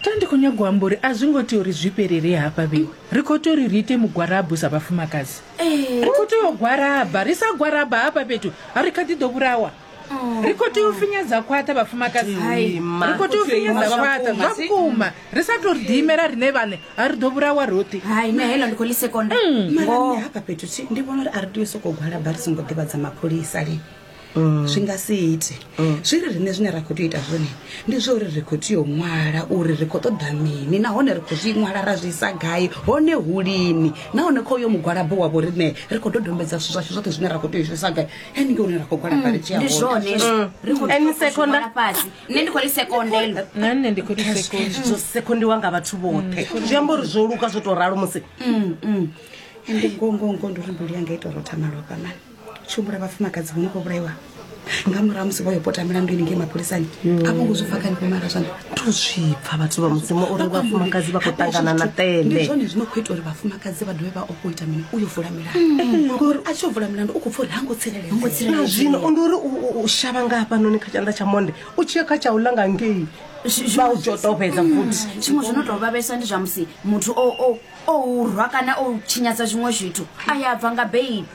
tandi khou nyagwa amba uri a zwi ngo tea uri zwi fhelele hafha vhewe ri khou tea uri ri ite mugwarabu sa vhafumakadzi ri khou tea u gwaraba ri sa gwaraba hafha fhethu ha ri kha ḓi ḓo vhulawa ri khou tea u finyedza khwaṱha vhafumakadzi ri khou tea u finyedza khwaṱha zwa vhukuma ri sa tou ri ḓiimela riṋe vhaṋe ha ri ḓo vhulawa roṱhe hai nṋe heḽo ndi khou ḽi sekonda maranne hafha fhethu thi ndi vhona uri a ri tea u sokou gwalaba ri songo ḓivhadza mapholisa lini mm. zwi nga si ite mm. zwi ri riṋe zwine ra khou tea u ita zwone ndi zwa uri ri khou tea u ṅwala uri ri khou ṱoḓa mini nahone ri khou zwi ṅwala ra zwi isa gai hone hu lini nahone kha uyo mugwalabo wa vho riṋe ri khou dodombedza zwithu zwashu zwoṱhe zwine ra khou tea u zwisa gai ene ke une ra khou gwalaba ri tshia honendi khou ri sekondelnne ndi khou ri sekonde zwo sekondiwa nga vhathu vhoṱhe zwi amba uri zwo luka zwo tou ralo musi ndi ngongongo ndi uri mbili yanga ita uri o thamalofha mani tshi humbula vhafumakadzi vho no khou vhulaiwa nga murahu musi vho yo pota milandu ini ngei mapholisani mm. a vho ngo zwi pfa kani pomara zwani to zwi pfa vhathu vha mudzimu uri vhafumakadzi vha khou ṱangana na tele ndi zwone zwi no khou ita uri vhafumakadzi vha dovhe vha o khou ita mini u yo vula milandu mm. eh, ngori a tshi yo vula milandu u khou pfa uri ha ngo tsireledzea zwino ndi uri u shavha nga hafhanoni kha tshanḓa tsha monde u tshi ya kha tsha u langa ngei vha u dzota u fhedza mm. futhi tshiṅwe zwi no tou vhavhesa ndi zwa musi muthu o rwa kana o tshinyadza zwiṅwe zwithu a ya bva nga beili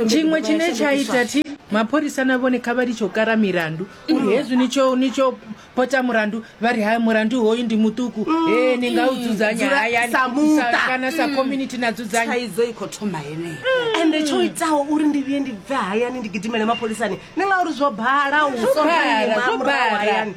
tshiṅwe tshine tsha ita thi mapholisa na vhone kha vha litshe u kara milandu uri mm. hezwi ni tsho ni tsho pota mulandu vha ri ha mulandu hoyu ndi muṱuku mm. e ni nga u dzudzanya hayakana sa mm. community na dzudzanyaidzo i khou thoma heneyo ende tsho itaho uri ndi vhuye ndi bve hayani ndi gidimele mapholisani ni nga uri zwo bala u soaayani